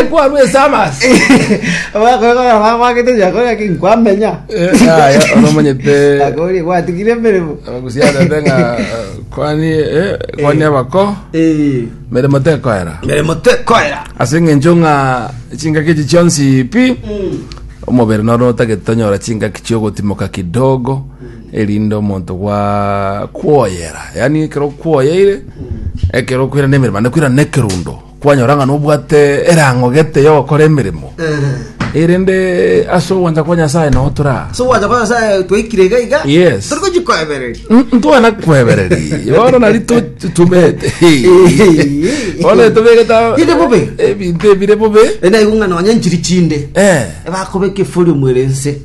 ekwarwa esamas abakoegora bagwagete chakore ake nkwamenya aya ono omonyete akori gwatigire emeremo abagusiana ande ng'a eh, kwani eh, kwani abako Eh, meremo tekoera meremo tekoera ase eng'encho ng'a chingaki echi chionsi pi omobere noro otagete tonyora chingaki chiogotimoka kidogo erinde omonto gwakwoyera, yaani ekero okwoyeire, ekero okoirana na emeremo, naende koirana na ekerundo, kwanyora ng'a nobwate erang'o gete yogokora emeremo, erinde ase ogwancha kwa Nyasae nao toraa so gwancha kwa nyasaye twaikire iga iga Yes. turi gochi koebereri ntwana kwebereri bono nari tutumete bono tobegete Bire bobe. ebinto ebire bobe enaigo ng'a nonya nchiri chinde Eh. bakobeka efori omwere ense